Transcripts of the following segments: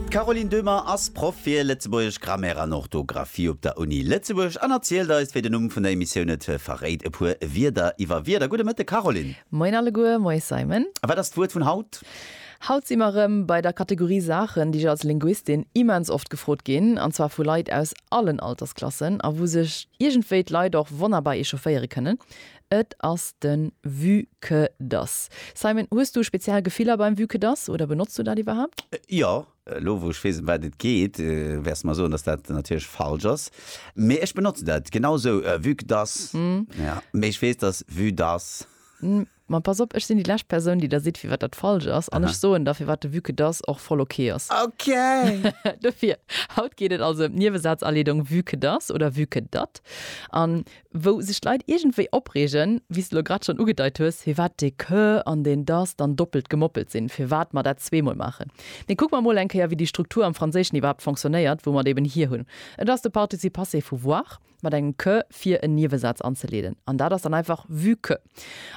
D'Caroline Döhmer ass Proff fir Lëtzebuergesch Grammaire an Orthografie op der Uni Lëtzebuerg an erzielt eis, wéi den Numm vun der Emissioun et verréit, e puer Wierder iwwer Wierder. Gudde Mëtteg, Caroline! Moien alleguer, moies Simon! A wat ass d'Wuert vun haut? Haut si mer erëm bei der Kategorie Saachen, déi ech als Linguistin immens oft gefrot ginn, an zwar vu Leit aus allen Altersklassen, a wou sech iergendwéi d'Leit och wonnerbar echaufféiere kënnen. Et ass den Vue que das. Simon, hues du speziell Gefiller beim Vue que das oder benotz du dat iwwerhaapt? Jo. Elo wou ech weess em wat et geet, wäers de mer soen, dass dat natierlech falsch ass. Mee ech benotzen dat genau esou, Vue que das. Ja. Mee ech weess, dass Vue das. Ma pass op, ech sinn déi lescht Persoun, déi der seet, firwat dat falsch ass. An ech soen der, firwat de Vue que das och voll ok ass. Ok! Dofir, haut geet et also em d'Niewesaazaleedung Vue que das oder Vue que dat. An wou sech d'Leit iergendwéi opreegen, wéi s de elo grad schonn ugedeit hues, firwat dee que an deen dass dann doppelt gemoppelt sinn, firwat mer dat zweemol maachen. Mee kucke mer emol eng Kéier, wéi déi Struktur am Franséischen iwwerhaapt fonctionnéiert, wou mer et eben hier hunn. Et ass de Participe passé vu voir mat engem que fir en Niewesaz anzeleeden, an dat ass dann einfach vu que.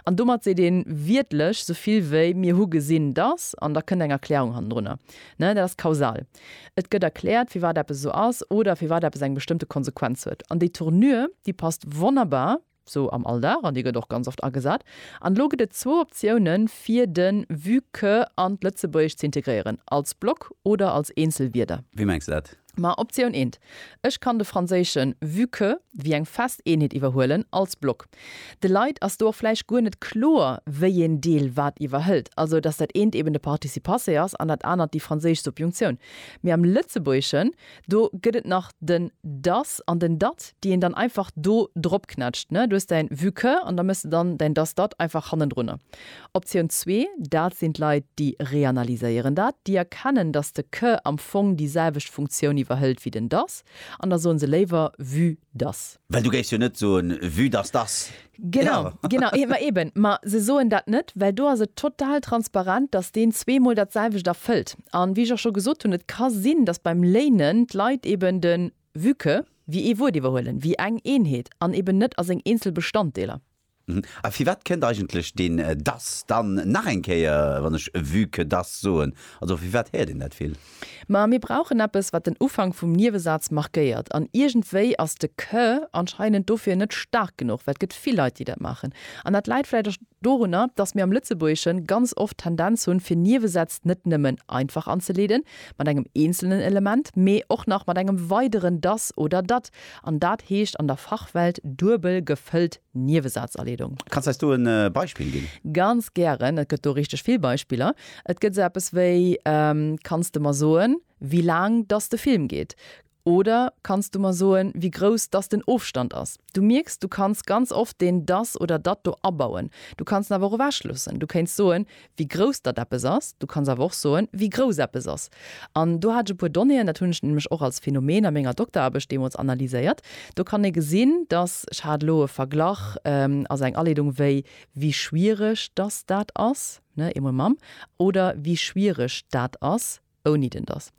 An domat seet ee wiertlech esou vill wéi mir hu gesinn, dass, an da kënnt eng Erklärung hannendrunner. Dat ass kausal. Et gëtt erkläert, firwat eppes esou ass oder firwat eppes eng bestëmmte Konsequenz huet. An déi Tournure, déi passt wonnerbar sou am Alldag, an déi gëtt och ganz oft agesat. An elo gëtt et zwou Optiounen, fir de vu que an d'Lëtzebuergescht ze integréieren, als Block oder als eenzel Wierder. Wéi mengs de dat? Ma Optioun eent, Ech kann de franséische vu que wéi eng fest Eenheet iwwerhuelen, als Block. De Leit ass do och vläicht guer net kloer, wéi een Deel wat iwwerhëlt, also datt dat eent eben de Participassé ass an dat anert déi franséisch Subjunctioun. Mee am Lëtzebuergeschen, do gëtt et nach den das an den dat, déi een dann einfach do dropknätscht. Du hues däin vu que an da méchs de dann däin das dat einfach hannendrunner. Optioun zwee, dat sinn d'Leit, déi reanalyséieren dat, déi erkennen, datt de que am Fong déi selwecht Funktioun iwwerhëlt wéi den das an da soen se léiwer vu dass. Well du géifs jo net soen, vue dass dass. Genau, genau, ee, ma eben, ma se soen dat net, well do ass et total transparent, dass deen zweemol datselwecht erfëllt. An wéi ech och scho gesot hunn, et ka sinn, dass beim léinen d'Leit eben de vue que wéi ee Wuert iwwerhuelen, wéi eng Eenheet an eben net a seng eenzel Bestanddeeler. A firwat kënnt eigentlech deen dass dann nach eng Kéier, wann ech vu que dass soen? Also firwat héiert een dat vill? Ma mir brauchen eppes, wat den Ufank vum Niewesaz markéiert. An iergendwéi ass de que anscheinend dofir net staark genuch, well et gëtt vill Leit, déi dat maachen. An dat läit vläicht och dorunner, dass mir am Lëtzebuergesche ganz oft d'Tendenz hunn, fir Niewesätz net nëmmen einfach anzeleeden mat engem eenzelnen Element, mee och nach mat engem weideren dass oder dat. An dat heescht an der Fachwelt duebel gefëllt Niewesazaleedung. Kanns eis do e Beispill ginn? Ganz gären, et gëtt do richteg vill Beispiller. Et gëtt esou eppes wéi, Kanns de mer soen, wéi laang dass de Film geet? oder Kanns du mer soen, wéi grouss dass den Ofstand ass? Du mierks, du kanns ganz oft deen dass oder dat do abauen. Du kanns en awer och ewechloossen. Du kéints soen, wéi grouss datt eppes ass, du kanns awer och soen, wéi grouss eppes ass. An do hat ech e puer Donnéeën, dat hunn ech nämlech och als Phänomen a menger Dokteraarbecht deemools analyséiert. Do kann ee gesinn, datt, ech hat elo e Verglach als eng Aleedung, wéi wie schwiereg datt dat ass, ne, eemol mam, oder wie schwiereg dat ass ouni den datt.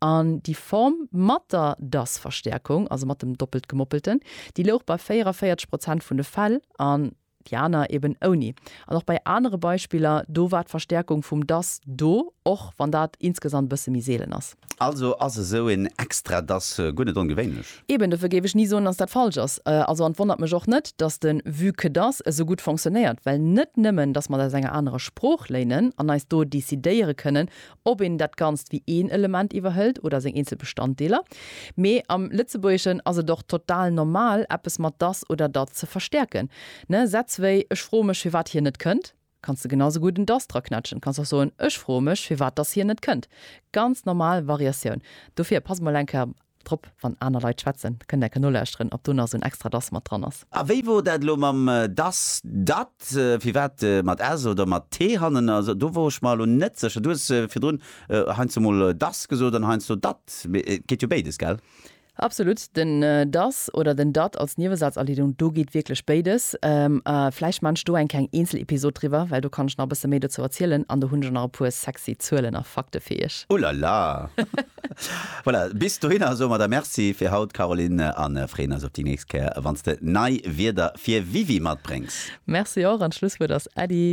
An déi Form mat der datt-Verstäerkung, also mat dem Doppeltgemoppelten, déi louch bei 44 Prozent vun de Fäll, an déi aner eben ouni. An och bei anere Beispiller, do war d'Verstäerkung vum dass do, och wann dat insgesamt e bësse méi seelen ass. Also ass esou een extra dass guer net ongewéinlech? Eben, dofir géif ech ni soen, dass dat falsch ass. Also, an et wonnert mech och net, dass de vue que dass esou gutt fonctionnéiert, well net nëmmen, dass mer et aus enger anerer Sprooch léinen an eis do decidéiere kënnen, ob een dat Ganzt wéi een Element iwwerhëlt oder seng eenzel Bestanddeeler. Mee am Lëtzebuergeschen ass et och total normal, eppes mat dass oder dat ze verstäerken. Ne, Sätz wéi Ech froe mech, firwat hien net kënnt, kanns de genau esou gutt en dass draquetschen. Kanns och soen, Ech froe mech, firwat dass hien net kënnt. Ganz normal Variatioun. Dofir pass mol eng Kéier Drop, wann aner Leit schwätzen, kënnt enke nolauschteren, ob do nach esou en extra das mat dran ass. A wéi wor dat elo mam das, dat, firwat mat s oder mat t hannen ass? Do wor ech mer elo net sécher. Du hues virdrun heiansdo mol das gesot an heiansdo dat, mee et geet jo béides, gell? Absolut, den das oder den dat als Niewesazerliedung, do geet wierklech béides. A vläicht maan ech do eng kleng Eenzelepisod driwwer, well do kann ech nach e bësse méi dozou erzielen an do hunn ech och nach e puer sexy Zuelen a Fakte fir iech. Ulala! Voilà, bis dohinner soe mer der Merci fir haut, Caroline, a freeën eis op déi nächst Kéier, wann s de nei Wierder fir Wiwi matbréngs. Merci och, an d'Schlusswuert ass Äddi.